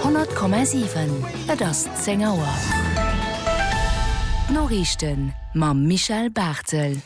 100,7 Et ass 10 Auer. D'Noriichten mam Michel Barthel.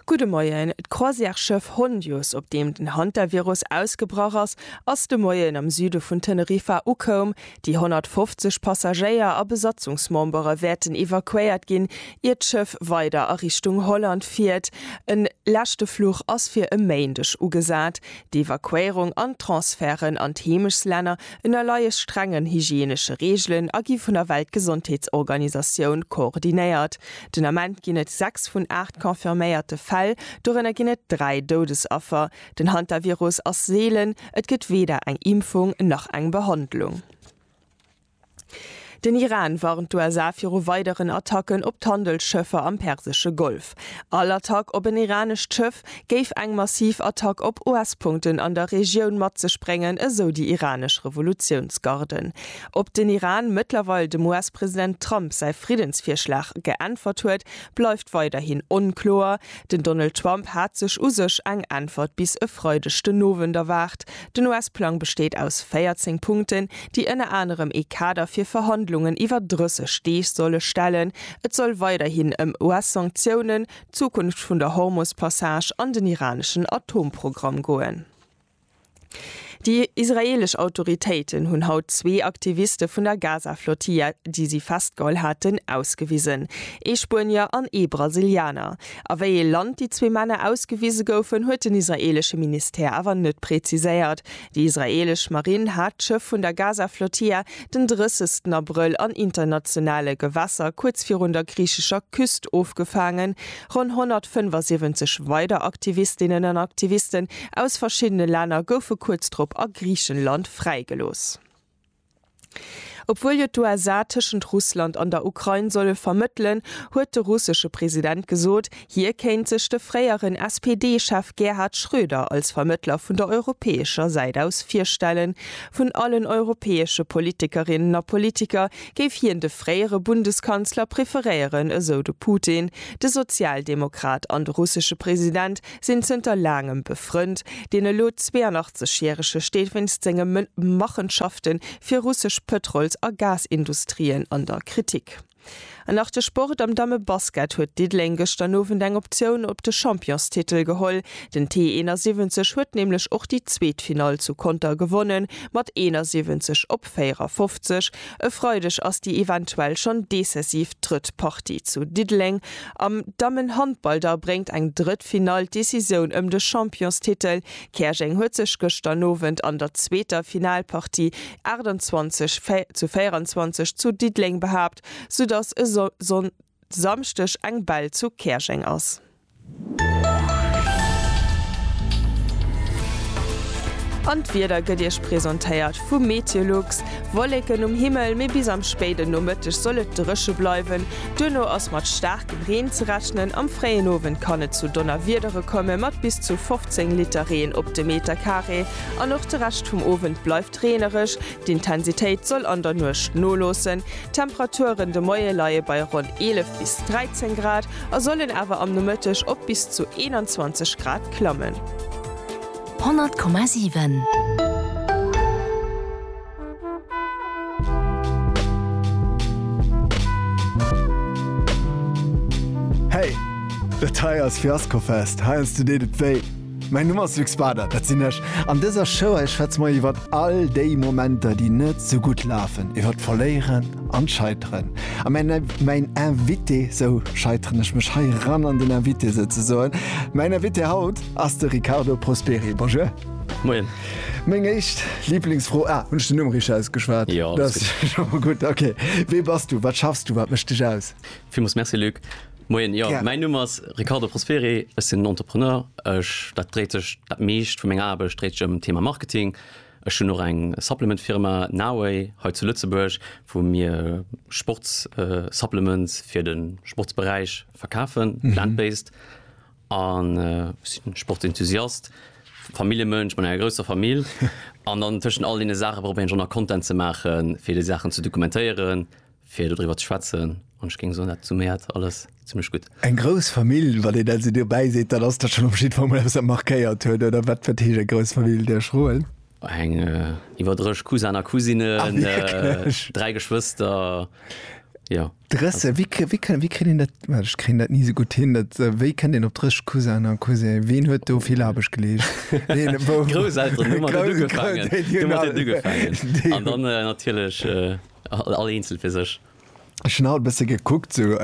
Gudde Moien. D'Croisièresschëff Hondius, op deem den Hantavirus ausgebrach ass, ass de Moien am Süde vun Teneriffa ukoum. Déi 150 Passagéier a Besatzungsmembere wäerten evakuéiert ginn, ier d'Schëff weider a Richtung Holland fiert. E leschte Fluch ass fir e Méindeg ugesat. D'Evakuéierung an d'Transferten an d'Heemechslänner ënnerleie strengen hygienesche Reegelen a gi vun der Weltgesondheetsorganisatioun koordinéiert. Den Ament ginn et 6 vun 8 confirméierte Fäll, dorënner ginn et 3 Doudesaffer. Den Hantavirus ass seelen, et gëtt weder eng Impfung nach eng Behandlung. Den Iran warnt d'USA viru weideren Attacken op d'Handelsschëffer am persesche Golf. All Attack op en iranescht Schëff géif eng massiv Attack op US-Punkten an der Regioun mat sech bréngen, esou déi iranesch Revolutiounsgarden. Ob den Iran mëttlerweil dem US-President Trump säi Friddensvirschlag geäntwert huet, bleift weiderhin onkloer. Den Donald Trump hat sech u sech eng Äntwert bis e Freideg den Owend erwaart. Den US-Plang besteet aus 14 Punkten, déi ënner anerem ee Kader fir Verhandlungen iwwer 30 Deeg solle stellen. Et soll weiderhin ëm US-Sanktiounen, d'Zukunft vun der Hormus-Passage an den iraneschen Atomprogramm goen. Déi israeelesch Autoritéiten hunn haut zwee Aktiviste vun der Gaza-Flottille, déi si festgeholl haten, ausgewisen, ee Spuenier an ee Brasilianer. A wéi ee Land déi zwee Männer ausgewise goufen, huet den israeelesche Ministère awer net präziséiert. Déi israeelesch Marinn hat d'Schëff vun der Gaza-Flotilla den 30 Abrëll an internationale Gewässer kuerz virun der griichescher Küst ofgefaangen. Ronn 175 weider Aktivistinnen an Aktivisten aus verschiddene Länner goufe kuerz drop a Griichenland fräigelooss. Obwuel jo d'USA tëschent Russland an der Ukrain solle vermëttelen, huet de russesche President gesot, hie kéint sech de fréieren SPD-Chef Gerhard Schröder als Vermëttler vun der europäescher Säit aus virstellen. Vun allen europäesche Politikerinnen a Politiker géif hien de fréiere Bundeskanzler preferéieren, esou de Putin. De Sozialdemokrat an de russesche President sinn zënter laangem befrënnt. Deen elo 82 järege steet wéinst senge Machenschafte fir russesch Pëtrols a Gasindustrien an der Kritik. An nach de Sport, Am Dammebasket huet Diddeleng gëschter Owend eng Optioun op de Championstitel geholl. Den T 71 huet nämlech och déi zweet Finall zu Conter gewonnen, mat 71 op 54. E Freideg ass déi eventuell schonn decisiv drëtt Partie zu Diddeleng. Am Dammenhandball da bréngt eng drëtt Finall d'Decisioun ëm de Championstitel. Käerjeng huet sech gëschter Nowend an der zweeter Finalpartie 28 zu 24 zu Diddeleng behaapt, soudass e Samschdeg eng Bell zu Käerjeng ass. An d'Wieder gëtt Iech presentéiert vu Meteolux. Wolleken um Himmel, mee bis am spéiden Nomëtteg soll et dréche bleiwen. Duerno ass mat staarkem Reen ze rechnen. Am fréien Owend kann et zu Donnerwiedere komme mat bis zu 15 Liter Reen op de Meterkaree. An och de Rescht vum Owend bleift reenereg, D'Intensitéit soll an der Nuecht noloossen, d'Temperaturen de Moie leie bei ronn 11 bis 13 Grad a sollen awer am Nomëtteg op bis zu 21 Grad klammen. 100,7. Hey! Dat hei ass Fiaskofest, heiansdo deet et wéi. Mäin Numm ass Luc Bader, dat sinn ech. An dëser Show hei schwätze mer iwwert all déi Momenter, déi net esou gutt lafen, iwwert d'Verléieren an d'Scheiteren. A mäin mäin Invité, sou scheiteren ech mech hei eran an den Invité souzesoen, mäin Invité haut ass de Riccardo Prosperi. Bonjour. Moien. Meng éischt Liblingsfro, ah, hunn ech den Numm richteg ausgeschwat? Jo, alles gutt. Gutt, okay. Wee bass du? Wat schaffs du? Wat mécht dech aus? Villmools Merci, Luc. Moien, jo mäin Numm ass Riccardo Prosperi, ech sinn Entrepreneur, ech dat dréit sech dat meescht vu menger Aarbecht dréit sech ëm Thema Marketing. Ech hunn och eng Supplement Firma Naway hei zu Lëtzebuerg wou mir Sports Supplements fir de Sportsberäich verkafen, plant based an ech sinn Sport Enthusiast, Familljemënsch mat enger grousser Famill an dann tëschent all deene Saache probéieren ech och nach Content ze maachen fir déi Saachen ze dokumentéieren, fir dodriwwer ze schwätzen an ech géing soen dat summéiert alles zimmlech gutt. Eng grouss Famill, wann een dat esou dobäi seet, dann ass dat schonn op jiddwer Mol eppes wat markéiert huet, oder wat? Wat heescht eng grouss Famill? Der Schroen? Eng iwwer 30 Cousin a Cousinen. Ah wierklech? 3 Geschwëster, jo. 30? Wéi kri, wéi kënn, wéi kritt een dat, well ech kréien dat ni esou gutt hin, dat, wéi kënnt een op 30 Cousinen a Cousinë? Ween huet do vill Aarbecht geleescht? Ween, wou? D'Grousselteren hu mat dat ugefaangen, hu mat dat ugefaangen an dann natierlech All eenzel fir sech. Ech hunn haut e bësse gekuckt, sou,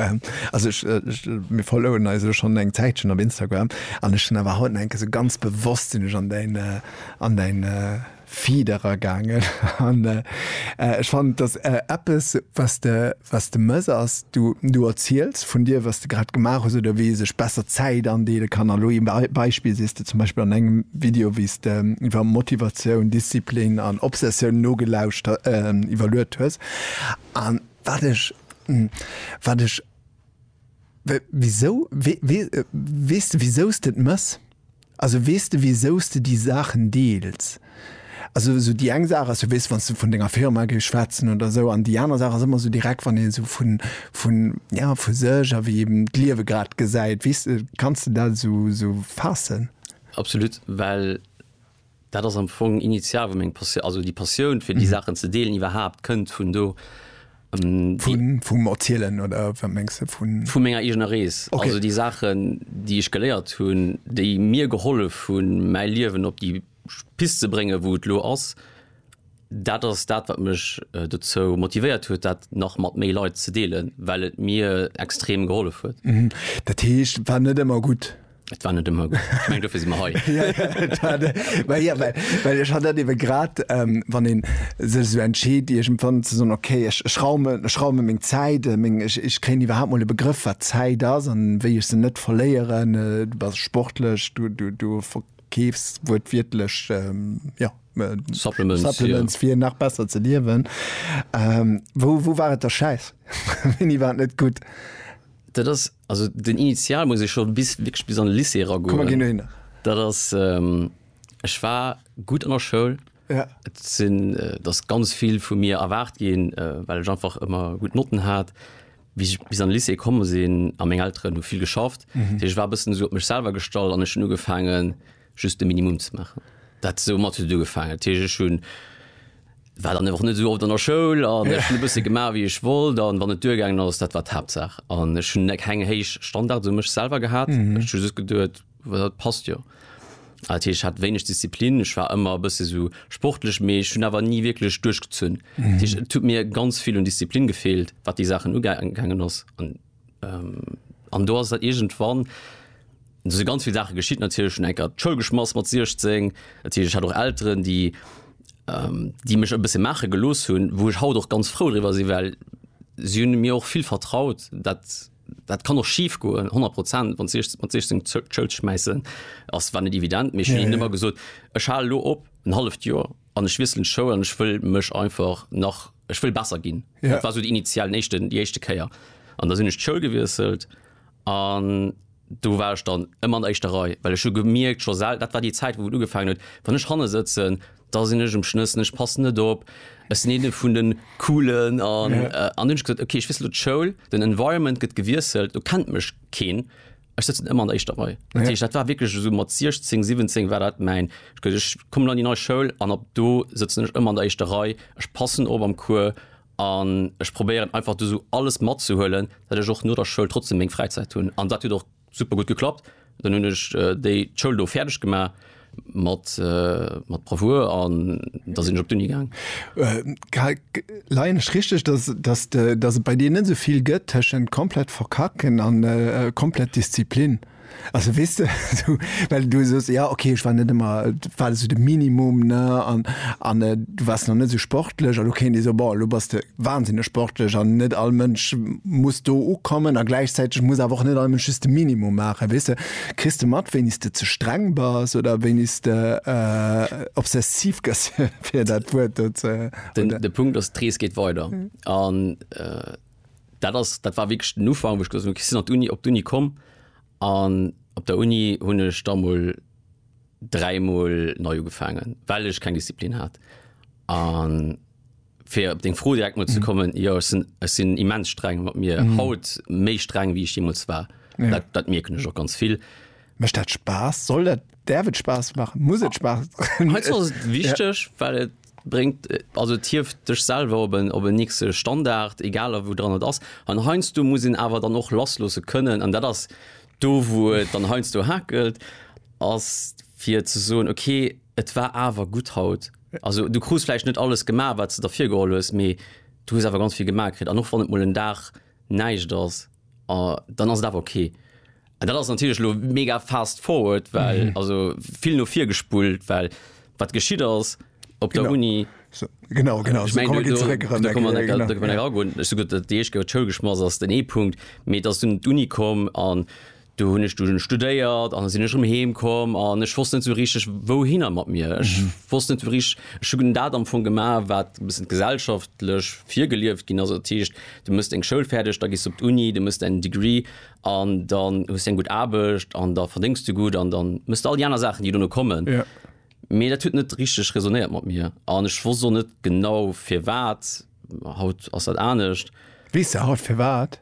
also ech, ech, mir followen eis elo schonn eng Zäitchen op Instagram an ech hunn awer haut nach enke sou ganz bewosst sinn ech an däin, an däin Feed eragaangen an ech fannen, et ass eppes, wat de, wat de mëss, ass, Du, du erziels vun dir, wat s de grad gemaach hues oder wéi ee sech besser Zäit andeele kann. Elo ee Bei, Beispill sees de zum Beispill an engem Video, wéi s de iwwer Motivatioun, Disziplin an Obsessioun nogelauschter, iwwerluet hues. An wat ech, wat ech, wéi, wisou, wee, wee, weess de wisou s de et méchs? Also weess de wisous de déi Saachen deels? Also esou déi eng Saach ass jo weess wanns de vun denger Firma géifs schwätzen oder esou an déi aner Saach ass ëmmer esou direkt wann een esou vun vun ja vu sech a wéi eben d'Liewe grad gesäit weess de. Kanns de dat esou esou faassen? Absolut well. Dat ass am Fong initial, wou meng Passioun, also déi Passioun fir déi Saachen ze deelen iwwerhaapt kënnt vun do. Vum Erzielen oder wat mengs de? Vu menger eegener Rees. Also déi Saachen, déi ech geléiert hunn, déi mir gehollef hunn, mäi Liewen op déi Pist ze bréngen, wou et elo ass, dat ass dat, wat mech dozou motivéiert huet, dat nach mat méi Leit ze deelen, well et mir extrem gehollef huet. Dat heescht, war net ëmmer gutt? Et war net ëmmer gutt. Ech meng, dofir si mer hei. Ja, ja, et war de- well, ja, well, well ech hat dat ewe grad, ähm, wann een sech esou entscheet, iergendwann ze soen, okay, ech, ech raume, ech raume meng Zäit, äh, meng, ech, ech kréien iwwerhaapt mol e Begrëff, wat Zäit ass an wéi ech se net verléieren. Äh, du bass sportlech, du, du, du verkeefs wuertwiertlech, ähm, ja, äh, Supplements, ja. Supplements fir nach besser ze liewen. Ähm, wou, wou war et da schäiss? Wéini war et net gutt? Dat ass. Also den Initial muss ich schon bis wirklich bis an den Lycée ra Komm, wir gehen hin. Dat ass ähm, ech war gut an der Schoul. Ja. Et sinn äh, dass ganz viel vu mir erwaart ginn, äh, well ech einfach ëmmer gut Notten hat. Wie ich bis an den Lycée komme sinn a meng Elteren hu vill geschafft. Mhm. Ech war e bëssen so op mech selwer gestallt an ech hunn ugefaangen just de Minimum ze maachen. Dat esou mat huet ugefaangen. Dat heescht, ech hunn, war dann och net esou oft an der Schoul an ech hunn e bësse gemaach, wéi ech wollt an wann et duergaangen ass, dat war d'Haaptsaach. An ech hunn keng héich Standarde u mech selwer gehat. Ech hu just geduet, dat passt jo. Dat heescht, ech hat wéineg Disziplin, ech war ëmmer e bësse sou sportlech, mee ech hunn awer ni wierklech duerchgezunn. Dat heescht, et huet mir ganz vill un Disziplin gefeelt, wat déi Saachen ugaangen ass An do ass dat iergendwann, do si ganz vill Saache geschitt natierlech, hunn eng Kéier d'Schoul geschmass mat 16. Dat heescht, ech hat och Elteren, déi, déi mech e bësse maache gelooss hunn, wou ech haut och ganz frou driwwer sinn, well si hunn mir och vill vertraut. Dat, dat kann och schif goen, honnert Prozent, wann s de mat 16 d'Schoul schmaissen, ass, war net evident. Mee ech hunn hinnen ëmmer gesot, ech hale lo op en halleft Joer. an ech wiesselen d'Schoul an ech wëll mech einfach nach, ech wëll besser ginn. Ja. Dat war esou déi initial, den éischten, déi éischte Kéier. An da sinn ech d'Schoul gewiesselt an do war ech dann ëmmer an der éischter Rei, well ech hu gemierkt scho sel, dat war déi Zäit, wou et ugefang huet, wann ech hanne sëtzen, da sinn ech um schnëssen, ech passen net op, ech sinn eene vun de Coolen an, an hunn ech gesot, okay, ech wiessel elo d'Schoul, den Environment gëtt gewiesselt, do kennt mech keen. Ech sëtzen ëmmer an der éischter Rei. Dat heescht, dat war wierklech esou mat 16, 17 war dat mäin, ech gëtt, ech kommen an déi nei Schoul an ab do sëtzen ech ëmmer an der éischter Rei, ech passen op am Cours an ech probéieren einfach do esou alles matzehuelen, datt ech och no der Schoul trotzdem meng Fräizäit hunn. An dat huet och super gutt geklappt. Dann hunn ech déi d'Schoul do fäerdeg gemaach. Mat Bravour, an da sinn ech op d'Uni gaang. Karl, leien ech richteg, datt et bei dir net esou vill gëtt tëschent komplett verkacken an komplett Disziplin? Also weess de, esou well du sos, jo ok, ech war net ëmmer, war esou de Minimum, ne, an du waars nach net esou sportlech, an elo kéint ee soen, bon, elo bass de Wahnsinneg sportlech an net all Mënsch muss do ukommen a gläichzäiteg muss awer och net all Mënsch just de Minimum maachen, weess de. Kriss de mat, wéinis de ze streng bass oder wéinis de obsessiv gëss, fir dat Wuert do ze Den, den Punkt ass, d'Rees geet weider an dat ass, dat war wierklech den Ufank, wou ech gesot hunn, okay, ech sinn an d'Uni, op d'Uni komm an op der Uni hunn ech da mol dräimol nei ugefaangen, well ech keng Disziplin hat an fir op deng Fro direkt mol ze kommen, jo ech sinn, ech sinn immens streng mat mir, haut méi streng wéi ech jeemools war. Dat, dat mierken ech och ganz vill. Mécht dat Spaass? Soll dat, däerf et Spaass maachen? Muss et Spaass? Heiansdo ass et wichteg, well et bréngt, also et hieft dech selwer op en, op en nächste Standard, egal a wou dran et ass. An heiansdo muss een awer dann och lassloosse kënnen, an dat ass do wou et dann heiansdo hakelt, ass fir ze soen, okay, et war awer gutt haut. Also du krus vläicht net alles gemaach, wat s de der virgeholl hues, mee du hues awer ganz vill gemaach kritt. An och wann et mol en Dag näischt ass, dann ass et awer ok. An dat ass natierlech elo mega fast forward, well, also vill no vir gespullt, well wat geschitt ass op der Uni, ech meng, do kënne mer necker eragoen, ech soe gutt, déi éischt Kéier, wou d'Schoul geschmass ass, ass den ee Punkt, mee et ass dunn d'Uni komm an. Do hunn ech dunn studéiert an da sinn ech erëm heem komm an ech wosst net esou richteg wouhinner mat mir. Ech wosst net esou richteg, ech hu dat am Fong gemaach, wat e bëssen gesellschaftlech virgelieft ginn ass. Dat heescht, du méchs deng Schoul fäerdeg, da gees du op d'Uni, du méchs däin Degree an dann hues du eng gutt Aarbecht an da verdéngs du gutt an dann méchs du all déi aner Saachen, déi dono kommen. Mee dat huet net richteg räsonéiert mat mir an ech wosst och net genau firwat. Haut ass dat anescht. Weess de haut firwat?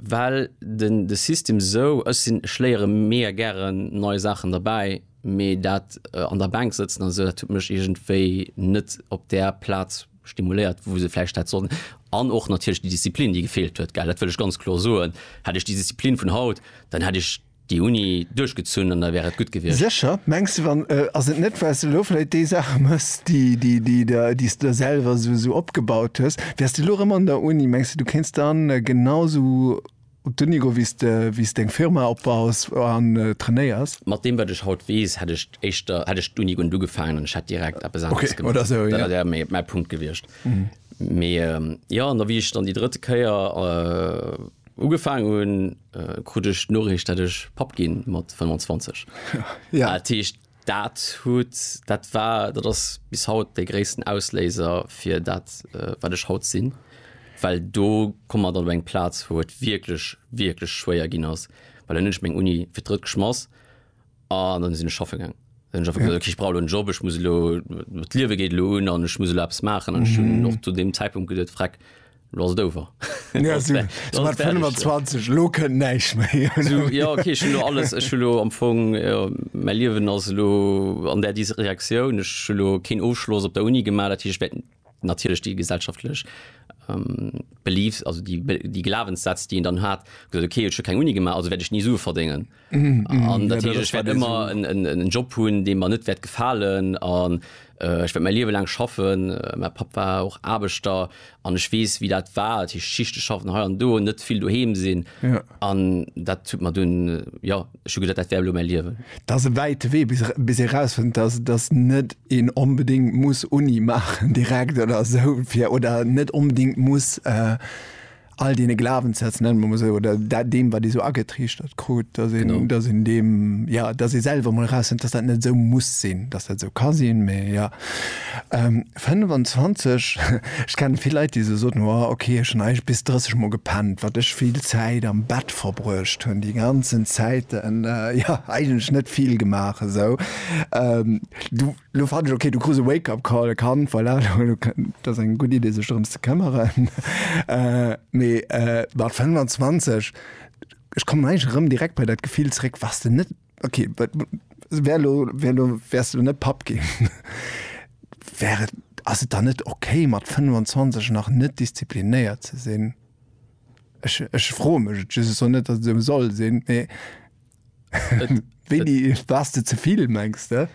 Well den de System esou, ech sinn, ech léiere mega gären nei Saachen derbäi, mee dat an der Bänk sëtzen an esou, dat huet mech iergendwéi net op där Plaz stimuléiert, wou se vläicht hätt sollen. An och natierlech déi Disziplin, déi gefeelt huet, gell, dat wëll ech ganz kloer soen. Hätt ech déi Disziplin vun haut, dann hätt ech déi Uni duerchgezunn an da wär et gutt gewiescht. Sécher? Mengs de, wann, ass et net well s de elo vläit déi Saache mëss, déi s de der selwer esou opgebaut hues, wäers de elo erëm an der Uni, mengs de du kéints da genau esou op d'Uni goen, wéi s deng Firma opbaus an trainéiers? Mat deem wat ech haut weess, hätt ech éischter, hätt ech d'Uni guernt ugefaangen an ech hätt direkt eppes aneres gemaach. Okay, oder esou, jo. Dat wär mäi Punkt gewiescht. Mee jo, an da wéi ech dann déi drëtt Kéier, Ugefaang hunn, krut ech d'Noriicht, dat ech Papp ginn, mat 25. Jo. Dat heescht, dat huet, dat war, dat ass bis haut de gréissten Ausléiser fir dat, wat ech haut sinn. Well do komm mer dann op eng Plaz, wou et wierklech, wierklech schwéier ginn ass, well dann hunn ech meng Uni fir d'drëtt geschmass An dann sinn ech schaffe gaang. Dann hunn ech einfach gesot, okay, ech brauch elo en Job, ech muss elo, d'Liewe geet elo un an ech muss elo eppes maachen. An ech hunn och zu deem Zäitpunkt gesot, Freck, elo ass et over. Elo ass et, elo ass et fäerdeg. Mat 25, elo kënnt näischt méi. Esou, jo, okay, ech hunn elo alles, ech hunn elo am Fong, jo, mäi Liewen ass elo an där Direktioun. Ech hunn elo keen Ofschloss op der Uni gemaach, dat heescht, ech wäert natierlech déi gesellschaftlech Beliefs, also déi Glawenssätz, déi een dann hat, gesot, okay, ech hu keng Uni gemaach, also wäert ech ni Sue verdengen. An dat heescht, ech wäert ëmmer en Job hunn, dee mer net wäert gefalen an ech wäert mäi Liewe laang schaffen. Mäi Papp war och Aarbechter an ech weess, wéi dat war, dat heescht Schichte schaffen hei an do, net vill doheem sinn. An dat huet mer dunn, jo, ech hu gesat, dat wär elo mäi Liewen. Et ass e wäite Wee, bis ee erausfënnt, dass dass net een onbedéngt muss Uni maachen direkt oder esou fir, oder net onbedéngt muss all deene Glawenssätz, nenne mer emol esou, oder dat, deem, wat ee sou agetriichtert krut, dass een, dass een deem, jo, dass ee selwer emol erausfënnt, dass dat net esou muss sinn, dass dat esou ka sinn, mee jo. 25, ech kennen vill Leit déi sou soten, jo ok ech hun eigentlech bis 30 mol gepennt, wat ech vill Zäit am Bett verbruecht hun déi ganzen Zäiten, jo eigentlech net vill gemaach esou. Du lo fannen ech ok, du krus e wake up call, e Kand, voilà dat ass eng gutt Idee sech drëms ze këmmeren. Mee mat 25, ech kommen eigentlech erëm direkt bei dat Gefill zréck, wars de net, okay wär lo wär lo wärst du net Papp ginn wär et ass et dann net okay mat 25 nach net disziplinéiert ze sinn ech ech froe mech et just esou net datt et esou soll sinn mee wéini wars de zevill mengs de?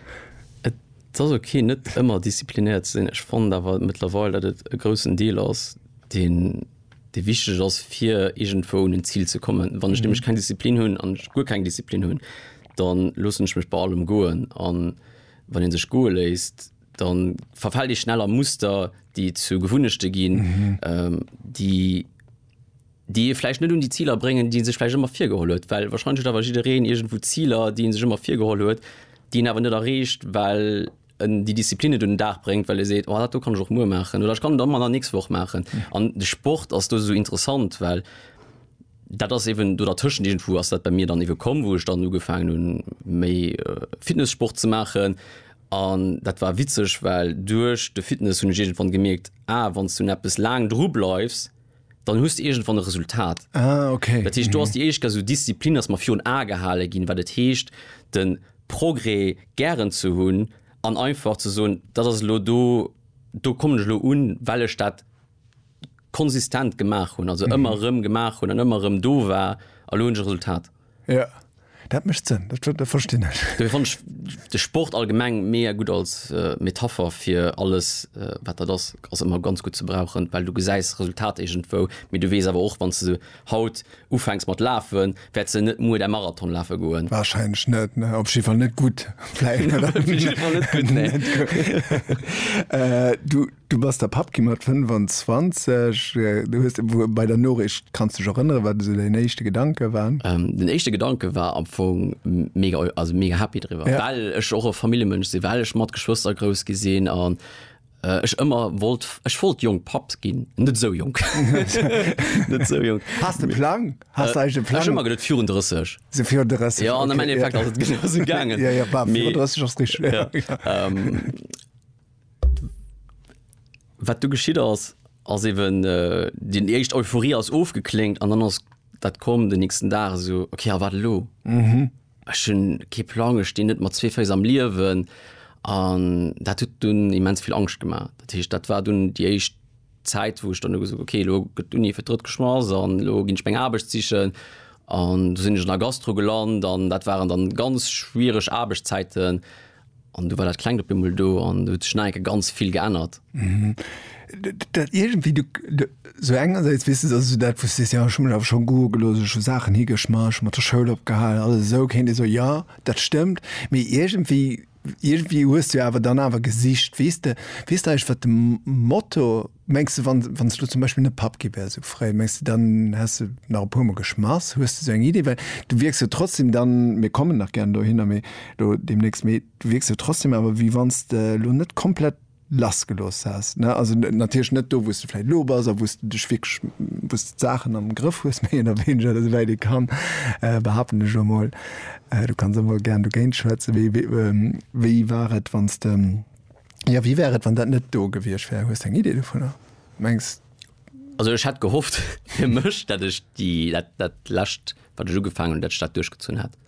Et ass okay net ëmmer disziplinéiert ze sinn ech fonnt awer mëttlerweil datt et e groussen Deel ass deen dee wichteg ass fir iergendwou un en Zil ze kommen. Wann ech nämlech keng Disziplin hunn an ech guer keng Disziplin hunn, dann loossen ech mech bei allem goen an wann een sech goe léisst, dann verfält ee schnell a Muster, déi zu Gewunnechte ginn, déi déi ee vläicht net un déi Ziler bréngen, déi ee sech vläicht ëmmer virgeholl huet. Well wahrscheinlech huet awer jiddereen iergendwou Ziler, déi ee sech ëmmer virgeholl huet, déi een awer net erreecht, well en déi Disziplin net un den Dag bréngt, well e seet, oh dat do kann ech och muer maachen oder ech kann et dann an der nächster Woch maachen. An de Sport ass do esou interessant, well dat ass eeben do dertëschent. Iergendwou ass dat bei mir dann ebe komm, wou ech dann ugefaangen hunn, méi Fitnessport ze maachen. An dat war witzeg, well duerch de Fitness hunn ech iergendwann gemierkt, ah wann s du un eppes laang drubleifs, dann hues de iergendwann e Resultat. Ah, okay. Dat heescht, do ass déi éischt Gag, esou Disziplin, dass mer virun Ae gehale ginn, wat et heescht, de Progrès gären ze hunn an einfach ze soen, dat ass elo do, do kommen ech elo un, well ech dat konsistent gemaach hunn, also ëmmer erëm gemaach hunn an ëmmer erëm do war a lo hunn ech e Resultat. Ja. Dat mécht Sënn, dat dat verstinn ech. Dobäi fannen ech de Sport allgemeng mega gutt als Metapher fir alles wat dat ass. Ass ëmmer ganz gutt ze brauchen, well du gesäis d'Resultat iergendwou, mee du weess awer och, wann s de haut ufänks mat lafen, wäerts de net muer däi Marathon lafe goen. Warscheinlech net, ne. Op jidde Fall net gutt, vläicht. Op jidde Fall net gutt, nee. Du. Du bass da Papp gi mat 25. Du hues bei der Noriicht, kanns du dech erënneren, wat esou däin éischte Gedanke waren? Den éischte Gedanke war am Fong mega, also mega happy driwwer, well ech och e Familljemënsch sinn, well ech mat Geschwëster grouss gi sinn an ech ëmmer wollt, ech wollt jonk Papp ginn. Net esou jonk, net esou jonk. Has de Plang? Has de eigentlech e Plang? Ech hu mer geduet virun 30. Sou virun 30. Jo, an am Endeffekt ass et genau esou gaangen. Jo, jo, virun 30 ass richteg. Wat du geschitt ass ass eben äh, den echt Euphorie ass ofgeklingt an dann ass dat kom den nächsten Dag so okay a wat lo mhm. hun ke Plange ste net mat zwee Féiss am Liewen an dat tut dun immens viel Angst gemacht dat hecht dat war dun die echt Zeit wo ich dann ges okay lo gëtt Uni fir drëtt geschmass an lo gin speng Aarbecht sichen an du sinn ech an der Gastro geland an dat waren dann ganz schwierg Aarbechtszeiten an An du war dat klengt op emol do an du huet sech neieke ganz vill geännert. Mhm. Dat irgendwie du, du so engerseits wis weißt du, also dat wusste ja schon mal schon go gelos schon Sachen higeschmarsch mat der Schoul opgehalen alles so kennt so ja dat stimmt mir irgendwie irgendwie hues du awer dann awer gesicht weste wis weißt du, wat dem Motto Mengs de wann wann s du zum Beispill net Papp gi wär sou fréi, mengs de dann häss de nach e puer mol geschmass? Hues de sou eng Idee? Well du wierks jo trotzdem dann, mir kommen nach gären dohinner, mee elo deemnächst, mee du wierks jo trotzdem awer wéi wann s de elo net komplett lass gelooss häss, ne? Also natierlech net do wou s de vläit elo bass a wou s de dech wierklech, wou s de d'Saachen am Grëff hues, méi oder wéineger esou wäit ee kann, behaapten ech elo mol. Du kanns och mol gären dogéint schwätzen. Wéi wéi war et wann s de. Ja wéi wär et wann dat net do gewiescht wär? Hues de eng Idee dovunner? Mengs Also ech hätt gehofft fir mech, datt ech déi dat dat lescht wat ech ugefaangen hunn, datt ech dat duerchgezunn hätt,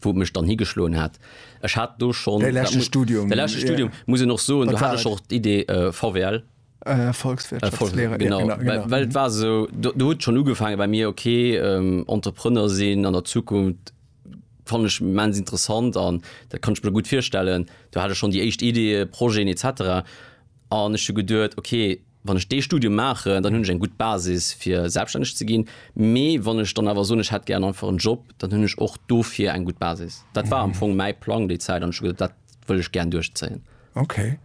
wou et mech dann higeschloen hätt. Ech hat do schonn, däi dat leschte muss Studium, däi leschte ja. Studium, muss een och soen, do Wat hat war ech et? och d'Idee äh, VWL. Äh, Volkswirtschaftslehrer, genau, ja, genau, genau. Weil, weil mhm. war so, du, du huet schon ugefangen bei mir okay ähm, Entrepreneur sinn an der Zukunft fand ich mens interessant an da kann ich mir gut feststellen. Du hatte schon die echt Idee, Projeten etc. an ich gedürt okay, wann ich de Studium mache, dann hunn ich eng gut Basis fir selbstständig ze ginn. Mee wann ich dann awer so ich hat gerne einfach einen Job, dann hunn ich och dofir eng gut Basis. Dat war am mhm. Fong mein Plan die Zeit an dat will ich gern durchzählen. Okay.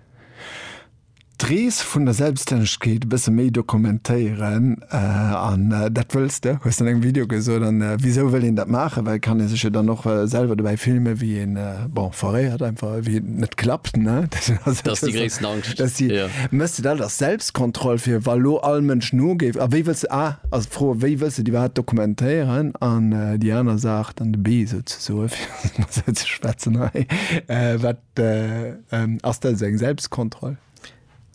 D'Rees vun der Selbstännegkeet e bësse méi dokumentéieren. An dat wëlls de, hues de an engem Video gesot. An wisou wëll een dat maachen? Well kann ee sech jo dann och selwer dobäi filmen, wéi een, bon, foréiert einfach, wéi et net klappt, ne? Dat ass jo déi gréissten Angscht. Dat ass déi, méchs de dat als Selbstkontroll, fir wa lo all Mënsch nogéif? A wéi wëlls de, a ass d'Fro, wéi wëlls de déi iwwerhaapt dokumentéieren? An déi aner Saach, dann de Bee esou ze soen, fir mat esou ze schwätzen hei, wat. De ass dat esou eng Selbstkontroll?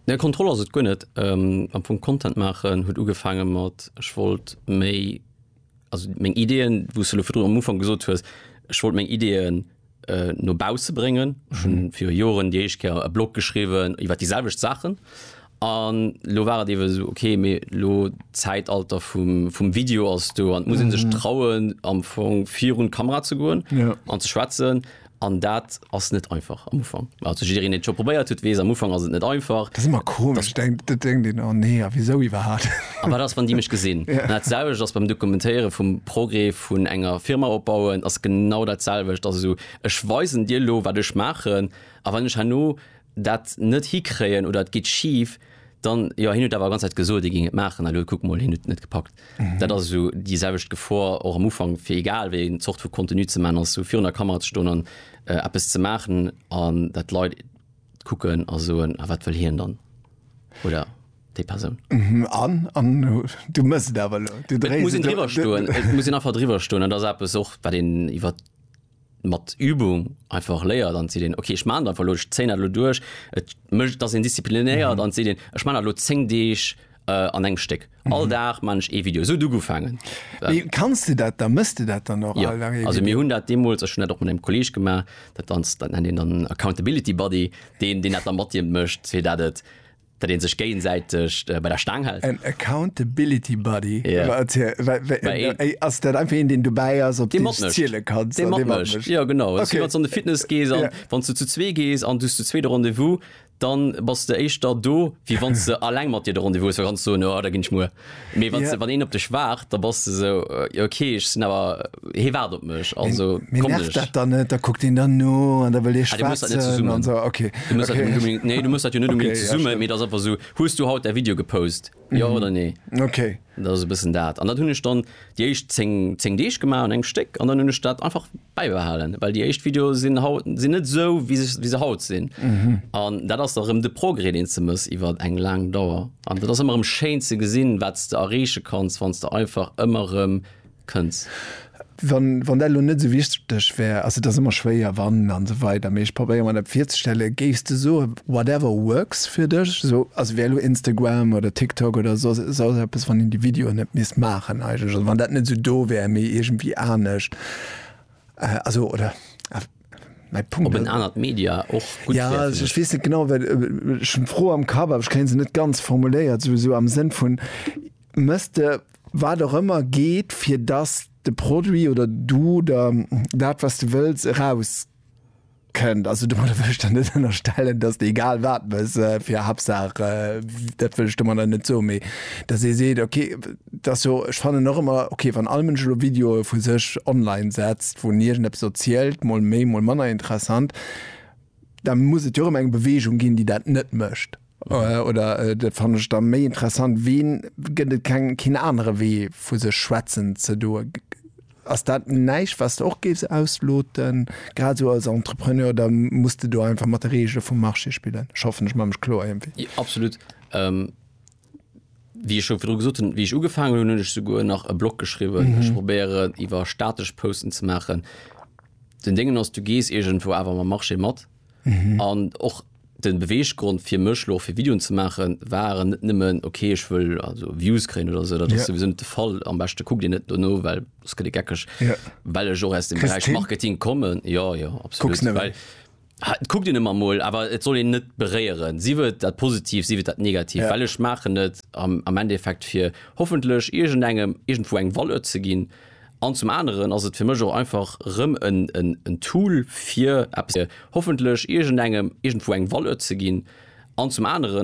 Nee Kontroll ass et guer net. Am Fong Content maachen huet ugefaange mat, ech wollt méi, also meng Ideeën, wou s de elo virdrun am Ufank gesot hues, ech wollt meng Ideeën no bausse bréngen. Ech hu viru Joren déi éischt Kéier e Blog geschriwwen iwwer déi selwecht Saachen An lo war et iewe sou, ok, mee lo d'Zäitalter vum, vum Video ass do an et muss ee sech trauen am Fong virun d'Kamera ze goen Ja. an ze schwätzen. An dat ass net einfach am Ufank. Also jiddereen, deen et scho probéiert huet, weess, am Ufank ass et net einfach. Dat ass ëmmer komesch, denkt, dat denkt een, oh nee, a wisou iwwerhaapt? A wat ass, wann déi mech gesinn? Ja. An dat selwecht ass beim Dokumentéiere vum Progrès vun enger Firma opbauen, ass genau dat selwecht. Also ech weisen dir lo, wat ech maachen, a wann ech herno dat net hikréien oder et geet schief, dann, jo hien huet awer ganz Zäit gesot hie géing et maachen, elo kuck mol hien huet et net gepackt. Dat ass esou déi selwecht Gefor och am Ufank fir egal wéi eng Zort vu Contenu ze maachen, ass esou virun der Kamera ze stoen an eppes ze maachen an dat d'Leit kucken a soen, a wat wëll hien dann oder déi Persoun. An, an du méchs et awer elo, du Et dréis muss een et driwwer stoen, et muss een einfach driwwer stoen an dat ass eppes och wat een iwwert, mat Übung einfach léiert an seet een okay ech maan dat einfach elo, ech zéien dat elo duerch, et mécht, et ass een disziplinéiert an et seet een ech maan dat elo 10 Deeg an engem Stéck, all Dag maan ech ee Video, esou huet et ugefaangen. Mee kanns de dat dann, méchs de dat dann och all Dag ee Video? Jo, also mir hunn dat deemools, ech hunn dat och mat engem Kolleeg gemaach, dat ass, dat nennt een dann Accountability Buddy, deen, deen dat da mat dir mécht, fir dat et, Datt een sech géiensäiteg bei der Staang hält. En Accountability Buddy? Ass dat einfach een, deen dobäi ass, op deen du sech ziele kanns? Dee mat mécht, jo genau. Ass wéi wann s du an de Fitness gees a wann s du zu zwee gees an du hues zu zwee de Rendez-vous, da bass de éischter do, wéi wann s de alleng mat dir de Rendez-vous hues, well da kanns du soen, jo da ginn ech muer. Mee wann, ja. wann een op dech waart, da bass de sou jo ok ech sinn awer hee waart op mech also komm ech. Dat dann net da kuckt een dann no an da wëll ee schwaatzen so, okay. Du muss okay. Unbedingt, nee du muss dat jo net unbedingt okay, ze summen, ja, mee dat einfach sou hues du haut der Video gepost mm. jo oder nee. Okay. Dat ass e bëssen dat an dat hunn ech dann déi éischt 10 10 Deeg gemaach an engem Stéck an dann hunn ech dat einfach bäibehalen, well déi éischt Videoe sinn haut sinn net esou wéi se wéi se haut sinn an dat ass da rëm de Progrès deen s de mëss iwwer eng laang Dauer an dat ass ëmmer erëm schéin ze gesinn wat s de erreeche kanns wann s de einfach ëmmer erëm kënns. Wann wann dat elo net esou wichteg wär, ass et ass ëmmer schwéier wann an esou weider, mee ech probéiere mer dat virzestellen, géifs de soe Whatever works fir dech, esou ass wär elo Instagram oder TikTok oder soss soss eppes, wann een déi Videoen net misst maachen eigentlech, also wann dat net esou do wär, mee iergendwéi anescht, also oder awer mäi Punkt. Ob en anert Media och gutt wär fir dech? Ja, ech weess net genau, well ech hunn d'Fro am Kapp, awer ech kréie se net ganz formuléiert, esou esou am Sënn vun, mëss de wat och ëmmer geet, fir datt de Produit oder du der dat wat s de wëlls eraus. Kënnt. Also domadder wëll ech der net ënnerstellen, dass Der egal wat mëss, fir Hapsaach, dat wëll ech domadder net soen, mee dass ee seet, ok, et ass jo, ech fannen och ëmmer, ok, wann all Mënsch elo Videoe vu sech online setzt, wou en iergendeppes erzielt, mol méi, mol manner interessant, da muss et jo erëm eng Beweegung ginn, déi dat net mécht. Oder dat fannen ech da méi interessant, ween gëtt et keng keen anere Wee vu sech schwätzen ze doe? Ass dat näischt wats de och géifs ausloten, grad esou als Entrepreneur, oder muss de do einfach mat de Regele vum Marché spillen? Ech hoffen ech man mech kloer iergendwéi. Jo absolut. Wéi ech scho virdru gesot hunn, wéi ech ugefaangen hunn, hunn ech souguer nach e Blog geschriwwen. Ech probéieren iwwer statesch Posten ze maachen. Den Déngen ass du gees iergendwou awer mam Marché mat. mhm. an och den Beweggrund fir mech lo fir Videoen ze machen waren net nëmmen okay ich will also Views kre oder so dat ja. sind de Fall am beste guck dir net no well das gët geckeg ja. well ech och aus dem Bereich Marketing kommen ja ja absolut guck dir immer mal aber et soll den net bereieren sie wird dat positiv sie wird dat negativ ja. weil ich machen net am, am Endeffekt fir hoffentlich irgend engem irgendwo eng Wolle ze gin An zum aneren ass et fir mech och einfach rëm en Tool fir eppes, hoffentlech iergendengem iergendwou eng Valeur ze ginn. An zum aneren.